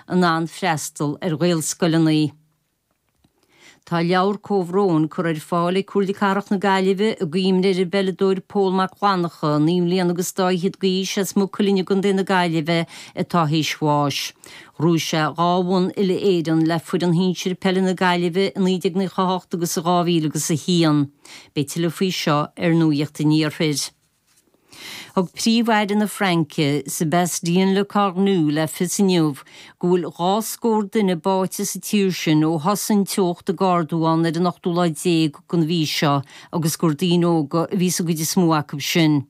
in ann freastal ar Ghaelscoileanna. Tá leabhar comhbhróin curtha ar fáil ag Comhairle Cathrach na Gaillimhe i gcuimhne ar an bpeileadóir Pól Mac Fhlannacha, naoi mbliana agus dá fhichead d'aois, as Maigh Cuilinn i gContae na Gaillimhe atá théis bháis. Ghnóthaigh sé dhá bhonn uile-Éireann le foireann shinsir peile na Gaillimhe i 1998 agus i 2001. Beidh tuilleadh faoi seo ar Nuacht an Iarthair. Thug Príomh-Aire na Fraince, Sébastien Lecornu, le fios inniu go bhfuil dhá scór duine báite sa tír sin ó thosaigh an teocht ag ardú ann ar an ochtú lá déag den mhí seo agus gur daoine óga a bhí sa gcuid is mó acu sin.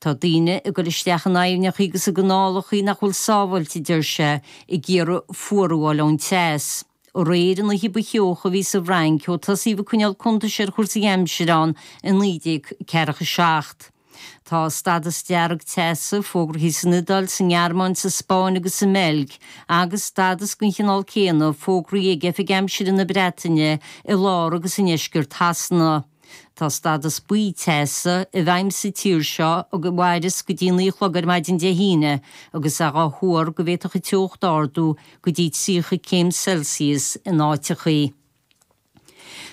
Tá daoine ag dul isteach in aibhneacha agus i gcanálacha nach bhfuil sábháilte, a deir sé, ag iarraidh fuarú a fháil ón teas. Aréir, an oíche ba theocha a bhí sa bhFrainc ó tosaíodh ag coinneáil cuntais ar chúrsaí aimsire ann i 1947. Tá stádas dearg teasa fógraithe san Iodáil, sa nGearmáin, sa Spáinn agus sa mBeilg, agus stádas den chineál céanna fógraithe ag Oifig Aimsire na Breataine, i lár agus i ndeisceart Shasana. Tá stádas buí teasa i bhfeidhm sa tír seo anois agus mairfidh sé go dtí 9 a chlog ar maidin Dé hAoine agus é dhá thuar go bhféadfadh an teocht ardú go dtí 30 céim Celsius in áiteachaí.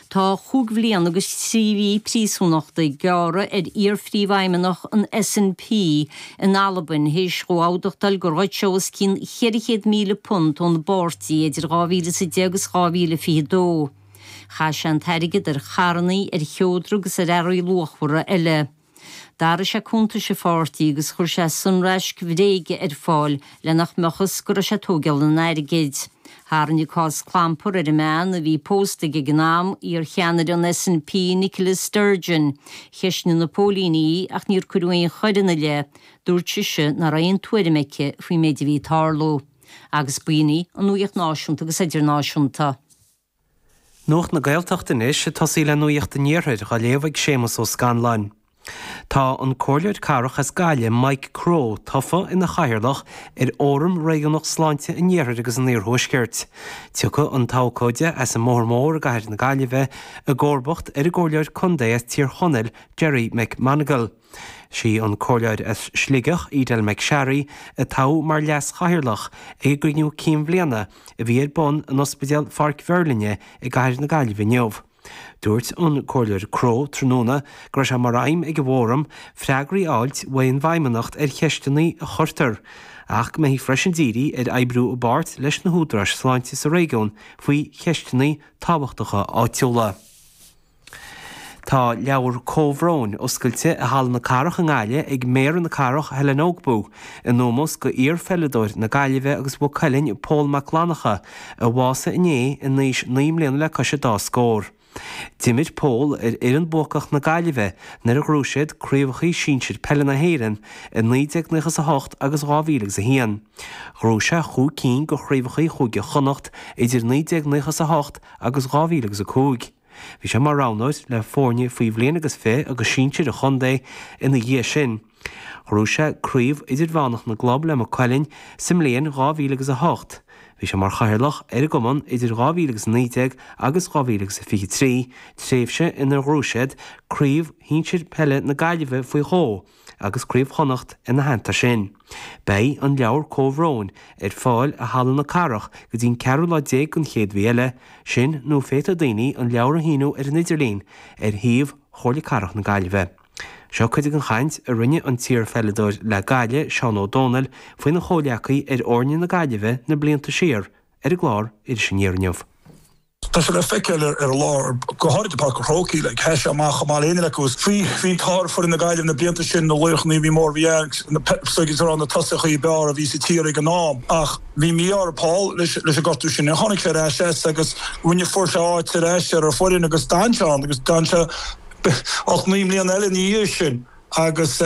Tá cúig bhliain agus trí mhí príosúnachta gearrtha ar iar-phríomhfheidhmeannach an SNP in Albain théis dhó amhdachtáil gur ghoid sé os cionn £400,000 ón bpáirtí idir 2010 agus 2022. Chaith sé an t-airgead ar charrannaí, ar sheodra agus ar earraí luachmhara eile. D'athraigh sé cuntais an pháirtí agus chuir sé sonraisc bhréige ar fáil le nach mbeadh fhios go raibh sé ag tóigeáil an airgid. Tharraing an cás clampar ar an mbean a bhí pósta aige ag an am, iarcheannaire an SNP, Nicola Sturgeon. Cheisnigh na póilíní í í ach níor cuireadh aon choir ina leith. Dúirt sise nach raibh aon tuairim aici faoin méid a bhí ag tarlú. Agus b'in í an nuaíocht náisiúnta agus idirnáisiúnta. Nuacht na Gaeltachta anois ag tosaí le nuaíocht an Iarthair dhá léamh ag Séamus Ó Scanláin. Tá an Comhairleoir Cathrach as Gaillimh, Mike Crowe, tofa ina Chathaoirleach ar Fhóram Réigiúnach Sláinte an Iarthair agus an Iarthuaiscirt. Tiocfaidh an t-abhcóide as an mBóthar Mór i gCathair na Gaillimhe i gcomharbacht ar an gComhairleoir Contae as Tír Chonaill, Gerry McMonagle. Is í an comhairleoir as Sligeach, Edel McSharry, a toghadh mar leas-chathaoirleach ag an gcruinniú cinn bhliana a bhí ar bun in Ospidéal Pháirc Mheirlinne i gcathair na Gaillimhe inniu. Dúirt an Comhairleoir Crowe tráthnóna go raibh sé mar aidhm ag an bhfóram freagraí a fháilt uaidh an bhFeidhmeannacht ar cheisteanna a chuirtear, ach go mbeifí freisin ag díriú ar oibriú i bpáirt leis na húdaráis sláinte sa réigiún faoi cheisteanna tábhachtacha áitiúla. Tá leabhar comhbhróin oscailte i Halla na Cathrach i nGaillimh ag Méara na Cathrach, Helen Ogbu, in ómós go iar-pheileadóir na Gaillimhe agus Mhaigh Cuilinn, Pól Mac Fhlannacha, a bhásaigh inné in aois naoi mbliana le cois a dá scór. D'imir Pól ar fhoireann buacach na Gaillimhe nuair a ghrú siad craobhachaí sinsir peile na hÉireann i naoi déag naocha is a hocht agus dhá mhíle agus a haon. Ghrú sé chúig cinn de chraobhachaí Chúige Chonnacht idir naoi déag naocha is a hocht agus dhá mhíle agus a cúig. Bhí sé mar roghnóir le foirne faoi bhliain agus fiche agus sinsir an chontae ina dhiaidh sin. Ghrú sé Craobh Idirmheánach na gClub le Maigh Cuilinn sa mbliain 2000 agus 8. Bhí sé mar chathaoirleach ar an gcumann idir 2000 agus 19 agus 2000 agus 23, tréimhse inar ghrú siad Craobh Shinsir Peile na Gaillimhe faoi dhó, agus Craobh Chonnacht ina theannta sin. Beidh an leabhar comhbhróin ar fáil i Halla na Cathrach go dtí an ceathrú lá déag den chéad mhí eile, sin nó féadfaidh daoine an leabhar a shíniú ar an idirlíon ar shuíomh Chomhairle Cathrach na Gaillimhe. Seo cuid den chaint a rinne an t-iarpheileadóir le Gaillimh, Seán Ó Domhnaill, faoina chomhghleacaí ar fhoirne na Gaillimhe na blianta siar ar an gclár Iris Aniar inniu. Tá sé le feiceáil ar an lá, go háirid i bPáirc an Chrócaigh, nuair a sheas sé amach Chomh maith linn acu, is bhí ar fhoireann na Gaillimhe na blianta sin, na laochra a bhí mór, bhí agus na tosaithe ab fhearr a bhí sa tír ag an am ach bhí mí-ádh ar Paul leis an ngortú sin. Tháinig sé ar ais as agus rinne fuair sé áit ar ais ar an bhfoireann agus d'fhan sé ann agus d'fhan sé ocht, naoi mbliana eile ina dhiaidh sin. agus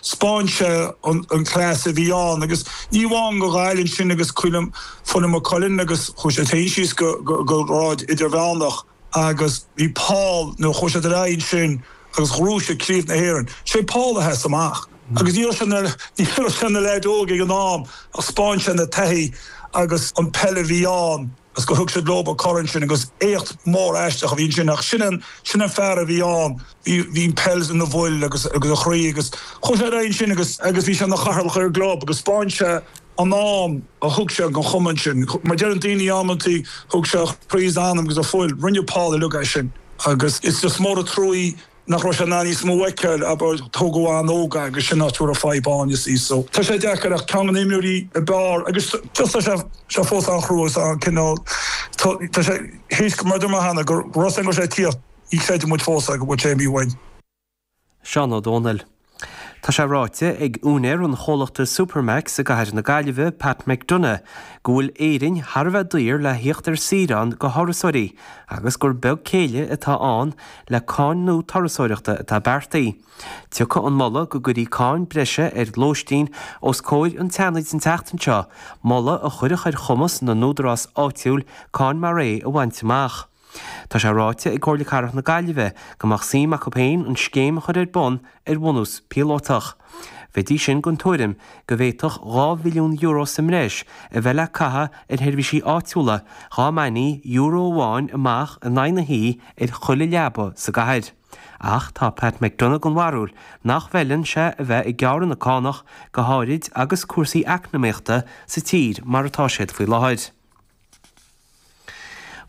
spáin sé an class a bhí ann agus ní amháin do Ghaillimh ansin agus club Maigh Cuilinn agus chuaigh siad síos go grád Idirmheánach agus bhí Paul nó chuaigh siad ar aghaidh ansin agus ghrú siad craobh na hÉireann. Sé Paul a sheas amach agus ní raibh sé ina ní raibh sé ina leaid óg ag an am ach spáin sé na taithí agus an peil a bhí ann. 's gur thug siad leob an corn ansin agus éacht mór aisteach a bhí ansin ach sin an, sin an fear a bhí ann, bhí, bhí an pheil ina fhuil agus, agus a chroí agus chuaigh sé ar aghaidh ansin agus, agus bhí sé ina Chathaoirleach ar an gclub agus spáin sé an am a thug sé don Chumann ansin, mar deireann daoine amantaí thug sé a chroí 's a anam agus a fuil, rinne Paul uilig é sin agus is, is mór an truaí nach raibh sé in ann níos mó a fheiceáil, abair, tógadh uainn óg é agus sin é an áit a raibh fadhb ann, you see. So, tá sé deacair ach ceann de na himreoirí ab fhearr agus just tá sé, tá sé fós an-chrua agus an-cineál, tá, tá a fhios agat, mar a deir mé cheana, go raibh rud éigin go raibh sé ag tíocht, ní chreideann muid fós é go bhfuil sé imithe uainn. Seán Ó Domhnaill. Tá sé ráite ag úinéir an chomhlachta Supermac's i gcathair na Gaillimhe, Pat McDonagh, go bhfuil Éirinn thar a bheith daor le thíocht ar saoire ann do thurasóirí agus gur beag céille atá ann le cáin nua turasóireachta atá beartaithe. Tiocfaidh an moladh go gcuirfí cáin breise ar lóistín os comhair an tSeanaid an tseachtain seo, moladh a chuirfeadh ar chumas na n-údarás áitiúil cáin mar é a bhaint amach. Tá sé ráite ag Comhairle Cathrach na Gaillimhe go mbeadh suim acu féin an scéim a chur ar bun ar bhunús píolótach. Bheidís sin den tuairim go bhféadfadh €2 mhilliún sa mbreis a bheith le caitheamh ar sheirbhísí áitiúla dhá mbainfí euro amháin amach in aghaidh na hoí ar chuile leaba sa gcathair. Ach tá Pat McDonagh den bharúil nach bhfeileann sé a bheith ag gearradh na cánach, go háirid agus cúrsaí eacnamaíochta sa tír mar atá siad faoi láthair.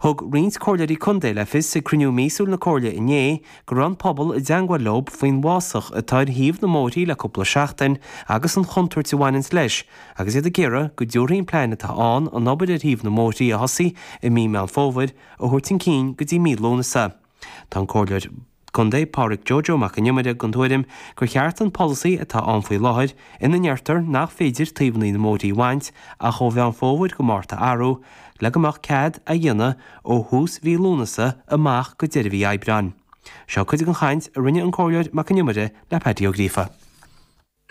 Thug roinnt Comhairleoirí Contae le fios ag cruinniú míosúil na Comhairle inné go raibh an pobal i dteangmháil leo faoin bhfásach atá ar thaobh na mbóithrí le cúpla seachtain agus an chontúirt a bhaineanns leis agus iad ag iarraidh go dtabharfaí an plean atá ann an obair ar thaobh na mbóithrí a thosaí i mí Meán Fómhair a thabhairt chun cinn go dtí mí Lúnasa. Tá an Comhairleoir Contae Pádraig Joe Joe Mac an Iomaire den tuairim gur cheart an polasaí atá ann faoi láthair, ina ndeirtear nach féidir taobhanna na mbóithrí a bhaint ach ó Mheán Fómhair go Márta a athrú, le go mbeadh cead a dhéanamh ó thús mhí Lúnasa amach go deireadh mhí Aibreáin. Seo cuid den chaint a rinne an Comhairleoir Mac an Iomaire le Paddy Ó Gríofa.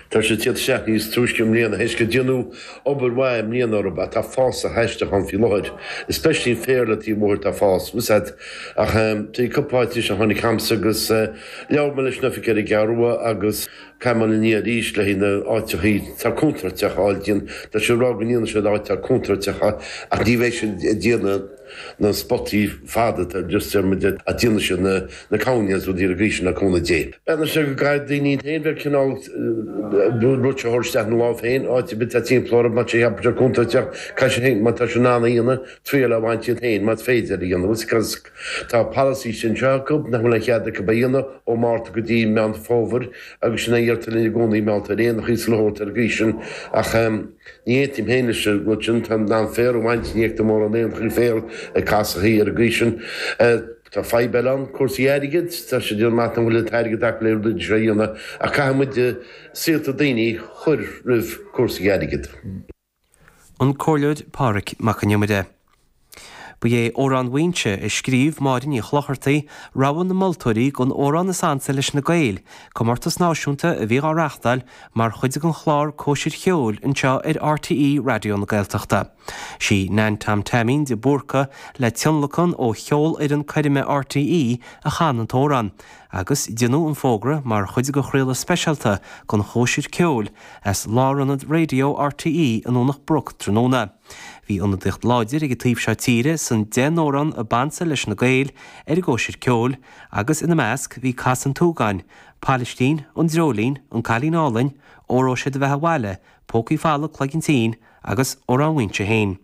Tá sé ag tíocht isteach níos túisce i mbliana, théis gur déanadh obair mhaith i mbliana orthu, ach tá fás an-aisteach ann faoi láthair. Especially féar le taobh an bhóthair, tá fás uafásach, tá cúpla áit anois a tháinig a'msa agus labhair mé leis an oifig ar an gCeathrú Rua agus caithfidh mé a dhul ina ndiaidh arís le haghaidh na áiteachaí atá contúirteach a fháil déanta. Tá siad ag rá go ndéanfaidh siad áit atá contúirteach ach ní bheidh siad ag déanamh na spotaí fada ar dtús, déarfainn go ndéanfaidh siad na cúinní is rudaí ar an gcaoi sin le cúnamh Dé. Breathnaíonn sé go gcaithfidh daoine iad féin bheith ag cineál rudaí a thabhairt isteach ina lámh féin, áit ar bith atá timpeall orthu, má tá sé cheaptha sé contúirteach, caithfidh sé féin, má tá sé in ann a dhéanamh, triail a bhaint iad féin, más féidir, a dhéanamh. Because tá polasaí anseo acu nach bhfuil aon chead acu a dhéanamh ó Mhárta go dtí Meán Fómhair agus sin a deirtear linn i gcónaí mar gheall ar éanachaí is a leithéid ar an gcaoi sin ach Ní fheicim féin, leis an rud sin, ó thaobh féar a bhaint, ní fheictear mórán éanachaí féir i gcás ar bith ar an gcaoi sin. Tá fadhb eile ann, cúrsaí airgid. Tá siad ag rá nach bhfuil an t-airgead acu le rudaí mar seo a dhéanamh, ach caithfidh muid saolta daoine a chur roimh cúrsaí airgid. An Comhairleoir Pádraig Mac an Iomaire. Ba é 'Amhrán Mhaínse', a scríobh Máire Ní Chlochartaigh, rogha na moltóirí don amhrán is ansa leis na Gaeil, comórtas náisiúnta a bhí dhá reáchtáil mar chuid den chlár 'Cóisir Cheoil' anseo ar RTÉ Raidió na Gaeltachta. Sí Nan Tom Teaimín de Búrca, le tionlacan ó Cheolfhoireann Coirme RTÉ, a chan an t-amhrán, agus déanadh an fógra mar chuid de chraoladh speisialta den 'Chóisir Ceoil' as lárionad raidió RTÉ i nDomhnach Broc tráthnóna. Bhí ionadaíocht láidir ag an taobh seo tíre san deich n-amhrán a b'ansa leis na Gaeil ar an gcóisir ceoil, agus ina measc bhí An tSeantúgáin, Pailistín, An Dreoilín, An Cailín Álainn, Óró Sé Do Bheatha Abhaile, Pócaí Folamh, Cloigeann Tinn, agus Amhrán Mhuínse féin.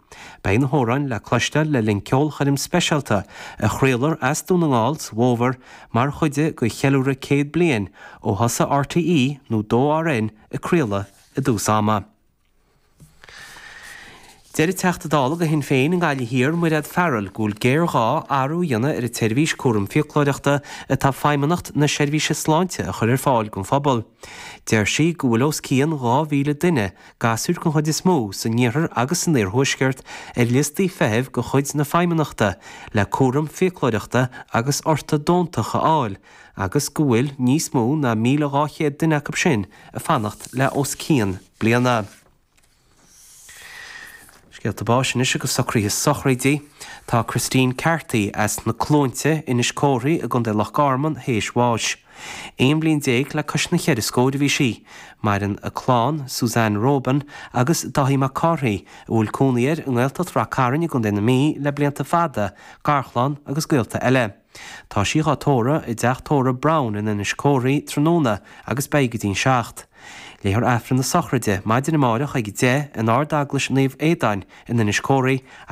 Beidh na hamhráin le cloisteáil le linn ceolchoirm speisialta a chraolfar as Dún na nGall sa bhFómhar mar chuid de cheiliúradh céad bliain ó thosaigh RTÉ nó 2RN ag craoladh i dtús ama. Deir Teachta Dála do Shinn Féin i nGaillimh Thiar, Mairéad Farrell, go bhfuil géarghá athrú a dhéanamh ar an tseirbhís cúram fiaclóireachta atá Feidhmeannacht na Seirbhíse Sláinte a chur ar fáil don phobal. Deir sí go bhfuil os cionn 2,000 duine, gasúir den chuid is mó, san iarthar agus san iarthuaisceart ar liostaí feithimh de chuid na Feidhmeannachta le cúram fiaclóireachta agus ortadóntach a fháil agus go bhfuil níos mó ná 1,200 duine acu sin ag fanacht le os cionn bliana. Scéalta báis anois agus socruithe sochraidí. Tá Christine Carthy as na Cluainte, Inis Córthaidh i gContae Loch Garman théis bháis. Aon bhliain déag le cois na ceithre scóir a bhí sí. Maireann a clann, Suzanne Roban agus Dáithí Mac Cárthaigh, a bhfuil cónaí air i nGaeltacht Ráth Chairn i gContae na Mí le blianta fada, garchlann agus gaolta eile. Tá sí dhá tórramh i dteach tórraimh Brown in Inis Córthaidh tráthnóna agus beidh go dtí'n seacht. Léifear Aifreann na sochraide maidin amáireach ag a deich in Ard-Eaglais Naomh Aodáin in Inis Córthaidh agus.